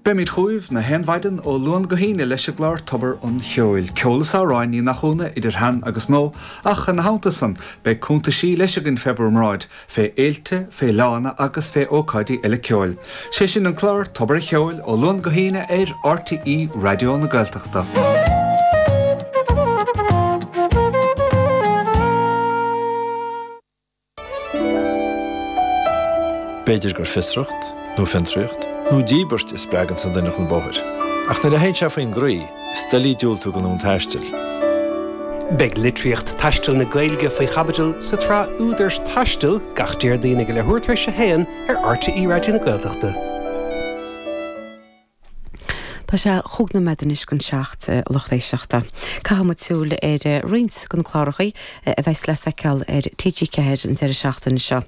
Beimid chugaibh na haon mhaidin ó Luan go hAoine leis an gclár Tobar an Cheoil, ceol is amhráin, ní nach ionadh, idir shean agus nua, ach ina theannta san, beidh cúntaisí leis againn fé bhúr mbráid, fé fhéiltí, fé fhleánna agus fé ócáidí eile ceoil. 'Sé sin an clár Tobar an Cheoil, ó Luan go hAoine ar RTÉ Raidió na Gaeltachta. B'fhéidir gur fiosracht, nó fiontraíocht, nó díbirt a spreagann an duine chun bóthair. Ach nuair a théann sé faoin gcroí, is doiligh diúltú don fhonn taistil. Beidh litríocht taistil na Gaeilge faoi chaibidil sa tsraith Údar Taistil gach Déardaoin ag a leathuair tar éis a haon ar RTÉ Raidió na Gaeltachta. Tá sé chúig nóiméad anois gon seacht a lucht éisteachta. Caithfidh muid súil ar roinnt go na clárachaí a bheas le feiceáil ar TG4 an deireadh seachtaine seo.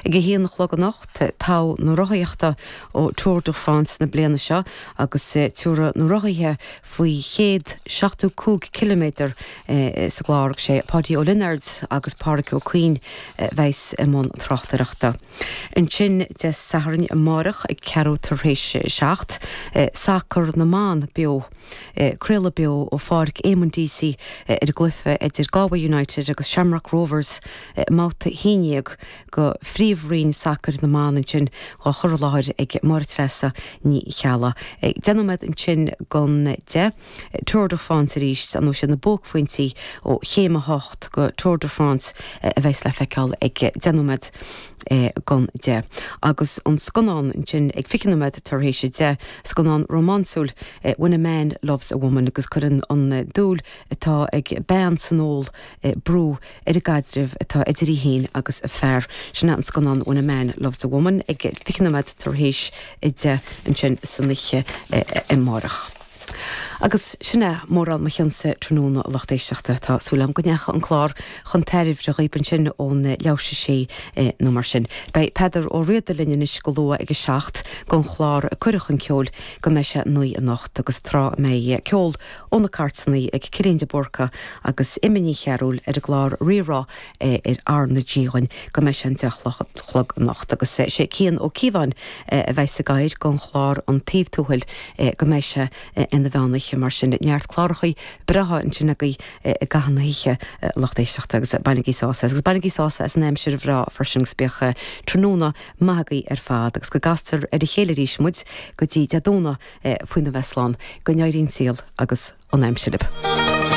Ag a haon a chlog anocht, Togha na Rothaíochta ó Tour de France na bliana seo agus tabharfaidh na rothaithe faoi chéad seachtú cúig ciliméadar Sa gclár, sé Páidí Ó Lionáird agus Pádraic Ó Cuinn a bheas i mbun tráchtaireachta. Ansin, Dé Sathairn amárach ag ceathrú tar éis a seacht, Sacar na mBan Beo. Craoladh beo ó Pháirc Éamonn Deasy ar an gcluiche idir Galway United agus Shamrock Rovers i mbabhta a haon déag de Phríomhroinn Sacair na mBan ansin á chur i láthair ag Máire Treasa Ní Cheallaigh. Deich nóiméad ansin gon deich. Tour de France arís, nó is iad na buaicphointí ó chéim a hocht go Tour de France a bheas le feiceáil ag deich nóiméad gan deich. Agus an scannán ansin ag fiche nóiméad tar éis a deich, scannán rómánsúil, When a Man Loves a Woman, agus cuireann an dúil atá ag bean san ól brú ar an gcaidreamh atá idir í féin agus a fear. Sin é an scannán When a Man Loves a Woman ag fiche nóiméad tar éis a deich ansin san oíche amárach. Agus sin é mórán mo chion-sa tráthnóna a lucht éisteachta. Tá súil agam go ndeacha an clár chun tairbhe dhaoib ansin ón leath tar éis a sé nó mar sin. Beidh Peadar Ó Riada linn anois go luath ag a seacht gon chlár Cuireadh chun Ceoil go mbeidh sé naoi anocht agus tráth a mbeidh ceol ó na cártanaí ag Cillian de Búrca agus Emma Ní Chearúil ar an gclár Rí-Rá Aerach na hAoine go mbeidh sé an deich a chlog anocht agus is é Cian Ó Cíobháin a bheas ag gabháil gon chlár An Taobh Tuathail go mbeidh sé ina mheán oíche mar sin neart clárachaí breátha ansin agaibh i gcaitheamh na hoíche a lucht éisteachta agus bainigí sás as agus bainigí sás as an aimsir bhreá freisin agus bíodh tráthnóna maith agaibh ar fad agus go gcastar ar a chéile arís muid go dtí Dé Domhnaigh faoin a bheith slán go n-éirí an saol agus an aimsir libh.